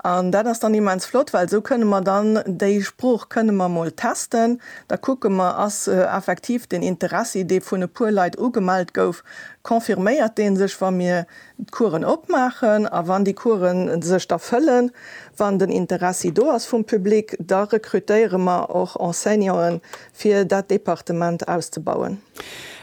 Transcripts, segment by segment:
An dat ass dann immens flott, well esou kënne mer dann déi Sprooch kënne mer mol testen. Da kucke mer, ass effektiv den Interessi, dee vun e puer Leit ugemellt gouf, confirméiert dee sech, wa mir d'Coursen opmaachen? A wann déi Coursen sech da fëllen, wann den Interessi do ass vum Public, da rekrutéiere mer och Enseignanten, fir dat Departement auszebauen.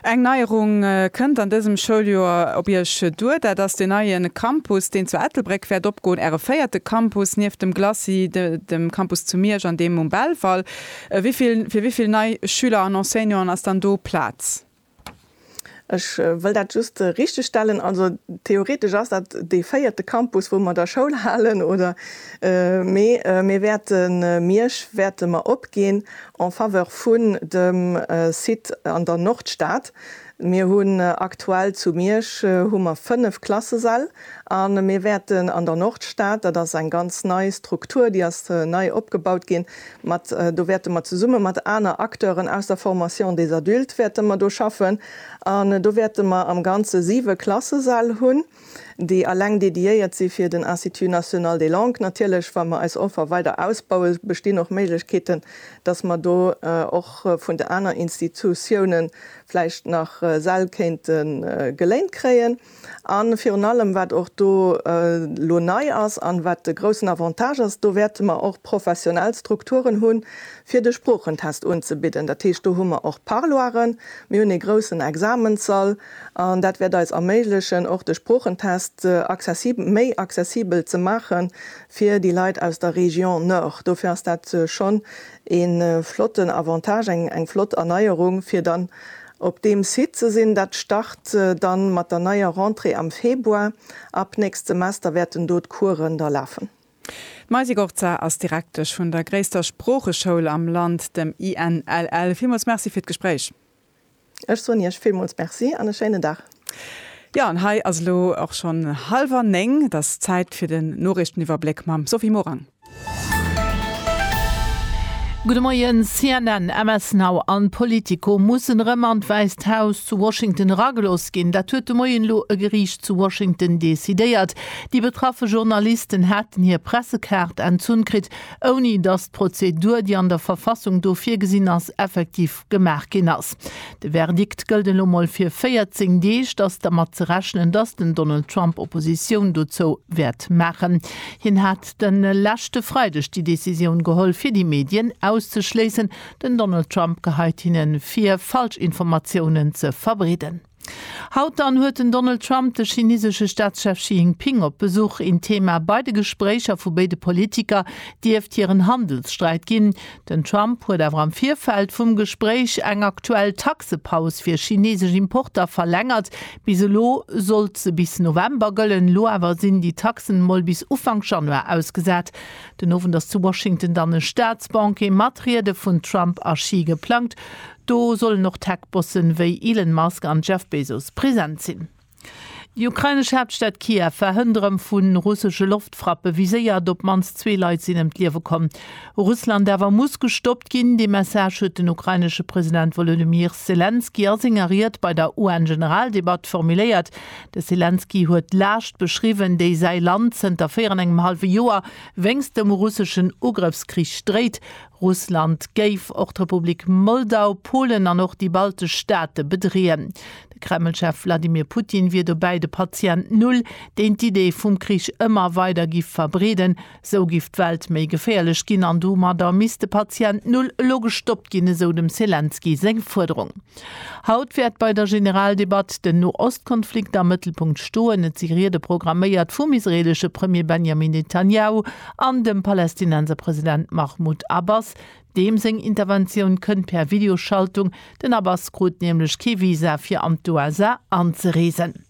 Eng Neierung kënnt an dësem Schouljoer op Iech duer. Dat ass den neie Campus, deen zu Ettelbréck wäert opgoen, Äre véierte Campus nieft dem Glacis, dem Campus zu Miersch an deem um Belval. Fir wéi vill nei Schüler an Enseignanten ass dann do Plaz? Ech wëll dat just richtegstellen. Also theoretesch ass dat dee véierte Campus, wou mer da Schoul halen, oder? Mee mir wäerte Miersch wäerte mer opginn en faveur vun dem Site an der Nordstad. Mir hunn aktuell zu Miersch hu mer fënnef Klassesäll, A mir wäerten an der Nordstad, dat ass eng ganz nei Struktur, déi ass nei opgebaut ginn, mat, do wäerte mer zesumme mat aner Acteuren aus der Formation des adultes wäerte mer do schaffen. An do wäerte mer am Ganze siwe Klassesäll hunn, déi eleng dédiéiert si fir den Institut national des langues. Natierlech, wa mer eis Offer weider ausbaue bestinn och Méiglechkeeten, dass mer do och vun de aner Institutiounen vläicht nach Säll kéinte geléint kréien. A virun allem, wat och do elo nei ass an wat de groussen Avantage ass, do wäerte mer och professionell Strukturen hunn, fir de Sproochentest unzebidden. Dat heescht, do hu mer och Parloiren, mir hunn ee groussen Examenssall an dat wäert eis erméiglechen, och de Sproochentest accessibel, méi accessibel ze maache fir déi Leit aus der Région Nord. Dofir ass dat schonn ee flotten Avantage, eng flott Erneierung, fir dann Op deem Site ze sinn. Dat start dann mat der neier Rentrée am Februar. Ab nächst Semester wäerten do d'Coursen da lafen. D'Maisy Gorza ass Direktesch vun der gréisster Sproocheschoul am Land, dem INLL. Villmools Merci fir d'Gespréich. Ech soen Iech villmools Merci an e schéinen Dag. Jo, an hei ass elo och schonn hallwer néng. Et ass Zäit fir den Noriichteniwwerbléck mam Sophie Morang. Gudde Moien, CNN, MS Now an Politico mussen erëm an d'Wäisst Haus zu Washington eragelooss ginn. Dat huet de Moien elo e Geriicht zu Washington decidéiert. Déi betraffe Journalisten haten hir Pressekaart entzunn kritt, ouni datt d'Prozedur, déi an der Verfassung do virgesinn ass, effektiv gemaach ginn ass. De Verdikt gëllt elo mol fir 14 Deeg. T'ass dermat ze rechnen, dass den Donald Trump Oppositioun dozou wäert maachen. Hien hat de leschte Freideg déi Decisioun geholl, fir déi Medien auszeschléissen. Den Donald Trump geheit hinne vir, falsch Informatiounen ze verbreeden. Haut dann huet den Donald Trump de chinesesche Staatschef Xi Jinping op Besuch. Een Thema bei de Gespréicher vu béide Politiker dierft hiren Handelssträit ginn. Den Trump huet awer am Virfeld vum Gespréich eng aktuell Taxepaus fir chinesesch Importer verlängert. Bis elo sollt se bis November gëllen, elo awer sinn déi Taxen mol bis Ufank Januar ausgesat. Den Owend ass zu Washington dann e Staatsbanquet mat Riede vun Trump a Xi geplangt. Do sollen och Tech-Bossen wéi Elon Musk an Jeff Bezos present sinn. Déi ukrainesch Haaptstad Kiew war hënt erëm vu russesche Loftfrappe viséiert. Op d'mannst zwee Leit sinn ëm d'Liewe komm. Russland awer muss gestoppt ginn. Dee Message huet den ukrainesche President Wolodymyr Selenskyj a senger Ried bei der UN-Generaldebatt formuléiert. De Selenskyj huet d'Laascht beschriwwen, déi säi Land zënter véier an engem hallwe Joer wéinst dem russeschen Ugrëffskrich dréit. Russland géif och d'Republik Moldau, Polen an och déi baltesch Staate bedreeën. De Kreml-Chef Wladimir Putin wier dobäi de Patient Null, deen d'Idee vum Krich ëmmer weider giff verbreeden. Esou giff d'Welt méi geféierlech ginn an domadder misst de Patient Null elo gestoppt ginn, esou dem Selenskyj seng Fuerderung. Haut wäert bei der Generaldebatt den No-Ost-Konflikt am Mëttelpunkt stoen. Et si Riede programméiert vum israeelesche Premier Benjamin Netanjahu an dem Palästinenser President Mahmoud Abbas. Deem seng Interventioun kënnt per Videoschaltung, den Abbas krut nämlech kee Visa fir an d'USA anzereesen.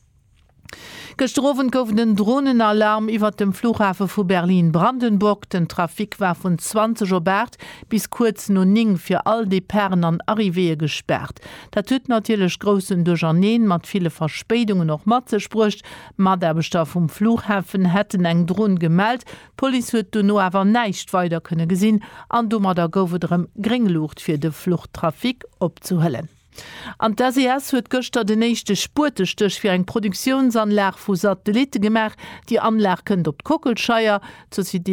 Gëschter Owend gouf et en Dronenalarm iwwert dem Flughafe vu Berlin-Brandenburg. Den Trafic war vun 20 op 8 bis kuerz no 9 fir all Departen an Arrivéeë gespaart. Dat huet natierlech groussen Duercherneen mat ville Verspéidungen och mat sech bruecht. Mataarbechter vum Flughafen hätten eng Dron gemellt. D'Police huet dono awer näischt weider kënne gesinn an domadder gouf et erëm gréng Luucht fir de Fluchtrafic opzehëllen. An d'SES huet gëschter den éischte Spuetestéch fir eng Produktiounsanlag vu Satellitte gemaach. Déi Anlag kënnt op d'Kockelscheier. D'Société